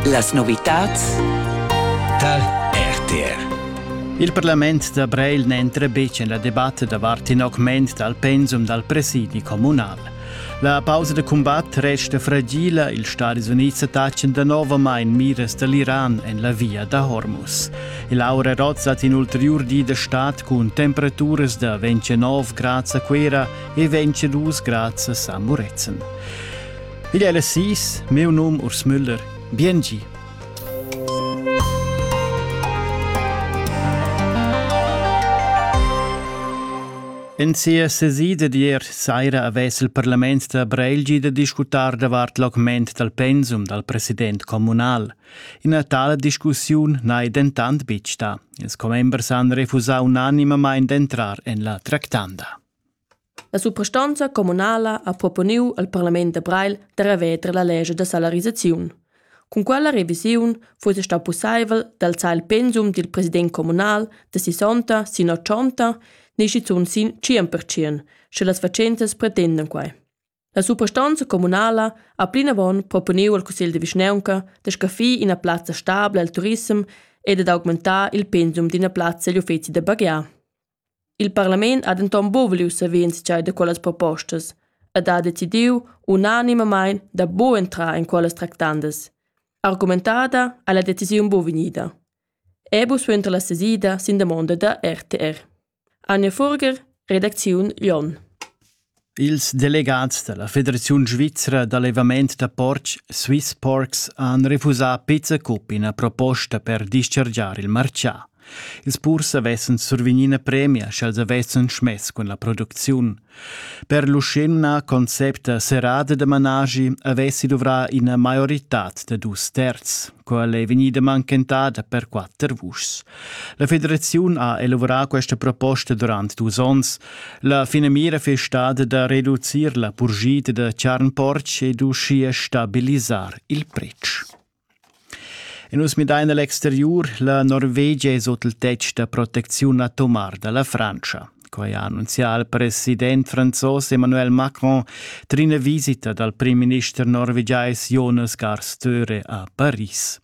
Las novitads tar RTR. Il parlament da Breil n'entra betg en la debatta davart in augment dal pensum dal presidi communal. La pausa da cumbat resta fragila, ils Stadis Unids attachan danovamain miras da l'Iran en la via da Hormuz. Laura Roz hat in ulterior di da stat cun temperaturas da 29 grads a Quera e 22 grads a San Murezzan. Igl è las sis, meu num Urs Müller. Biengi. En sia sesida d'ier saira avess il parlament da Breilgi da discutar davart l'augment dal pensum dal president communal. Ina tala discussiun n'hai dentant betg stà. Ils commembers han refusà unanimamain d'entrar en la tractanda. La suprastonza communala ha proponiu al parlament da Breil da reveter la lescha da salarisaziun. Cun quella revisiun fuss stau pusseivel d'alzar il pensum dil president communal da sessanta sin ochonta ni schizun sin tschien per tschien, sche las fatschentas pretendan quei. La suprastonza communala ha plinavon proponiu al cussegl de vischnaunca da scaffir ina plazza stabla al turissem e dad augmentar il pensum d'ina plazza egl uffeci da baghiar. Il parlament ha denton buc voliu saver entscheider da quellas propostas ed ha decidiu unanimamein da buc entrar in quellas tractandas. Argumentada ha la decisiun buc vegnida. Ebus suenter la sesida sin damonda da RTR. Anja Furger, redacziun Lyon. Ils delegats da la Federaziun svizra d'allevament da portg Swiss Porks han refusà pizza cup ina proposta per dischargiar il martgà. Ils purs avessan survegnì ina premia sch'els avessan smess cun la producziun. Per l'uschenna concept serrada da managi avessi duvrà ina maioritad da dus terz. Quella è vegnida manchentada per quatter vuschs. La federaziun ha elaborà questa proposta durant dus onns. La finamira è stada da reducir la purgita da charn-porc ed uschia stabilisar il pretsch. E nus midain el exteriur, la Norvegia es ot il tetg da protecziun atomar da la Frantscha. Quai ha annunzià il president franzos Emmanuel Macron trin una visita dal primminister norvegiais Jonas Gahr Støre a Paris.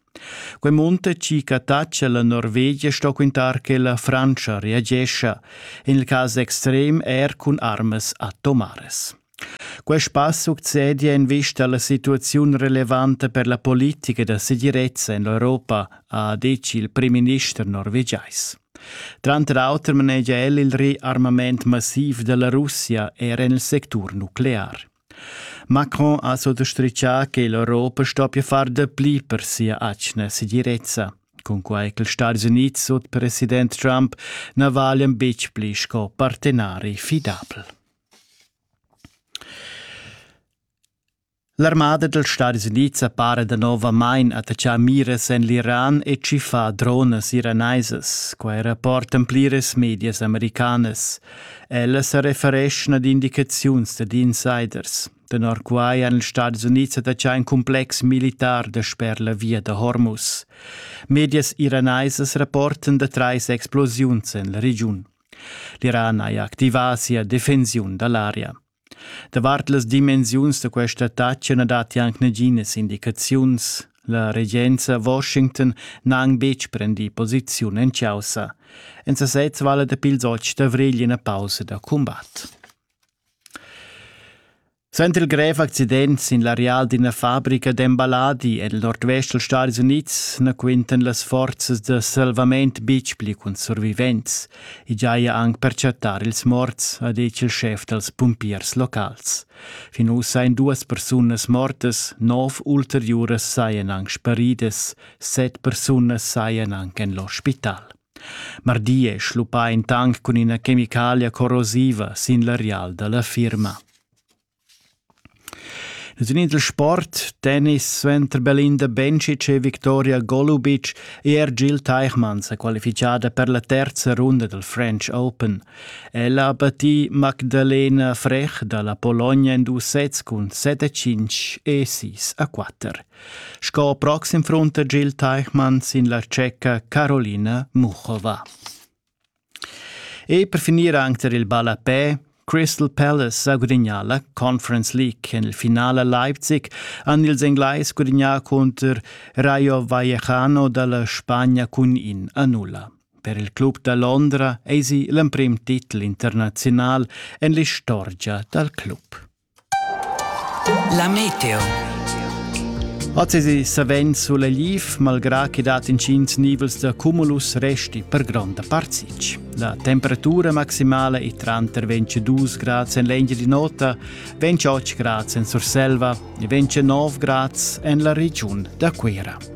Quei munta ci cataccia la Norvegia sto quintar che la Francia reagescia, in il cas extrem er cun armas atomares. Quest pass succedi en vista alla situaziun relevanta per la politica da segirezza en l'Europa, ha detg il primminister norvegiais. Tranter auter manegia el il riarmament massiv della Russia er en il sectur nuclear. Macron ha sottostritgà che l'Europa stoppia far dapli per sia atgna segirezza, cunquai che Stati Uniti sut president Trump na valian betg pli sco partenari fidabel. L'armada dals Stadis Unids para danovamain attachà miras en l'Iran e tschiffà dronas iranaisas. Quai rapportan pliras medias americanas. Ella sa refereschna ad indicaziuns dad insiders. Tenor quai han ils Stadis Unids attachà in cumplex militar dasper la via da Hormuz. Medias iranaisas rapportan da trais explosiuns en la regiun. L'Iran haja activà sia defensiun da l'aria. Davart las dimensiuns da questa attacca na datti anc naginas indicaziuns. La regenza Washington n'ha anc betg prendì posiziun en chaussa. En sasez vala dapi ils otg d'avrigl ina pausa da cumbat. Suenter il grev accident sin l'areal d'ina fabrica d'emballadi en il nordvest dals Stadis Unids na quintan las forzas da salvament betg pli cun survivents. I giaja anc per chattar ils morts, ha detg il schef dals pumpiers locals. Fin ussa èn duas persunas mortas, nov ulteriuras sajan anc sparidas, set persunas sajan anc en l'ospital. Mardi è schluppà in tanc cun ina chemicalia corrosiva sin l'areal da la firma. Nus in il sport, tennis suenter Belinda Bencic e Victoria Golubic e er Jill Teichmann sa qualifichada per la terza runda dal French Open. Ella ha battì Magdalena Frech da la Pologna en dus sets cun 7-5 e 6-4. Sco proxim front da Gil Teichmann sin la tscheca Carolina Muchova. E per finir anche per il ballapè Crystal Palace sa gudagnà la Conference League. En il finale Leipzig han ils Englais gudagnà contro Rayo Vallecano dalla Spagna cun in a nulla. Per il club da Londra eisi l'emprim titel internazional en l'istorgia dal club. La meteo. Oz savens sulla liv, malgrà che dat intgins nivels da cumulus resti per gronda part sitg. La temperatura maximala è tranter 22 grads en l'Engia di Nota, 28 grads en Surselva e 29 grads en la regiun da Cuira.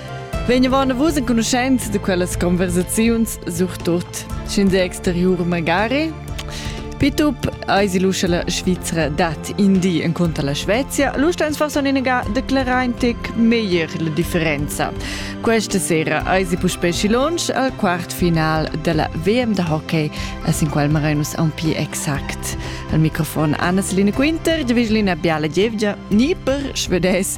Vegnevan vus enconuschents da quellas conversaziuns, surtut sin de exteriur magari? Pitup eis l'uscia la Svizzera dat indi en conto alla Svezia, l'usta ins forsa un'inega declarar in tic meglier la differenza. Questa sera eis puspè Schilonsch al quart final della WM da hockey, as in qual marenus a un pi exact. Al microfon Anna Selina Quinter, Dviglina Biala Gievgia, ni per Schwedes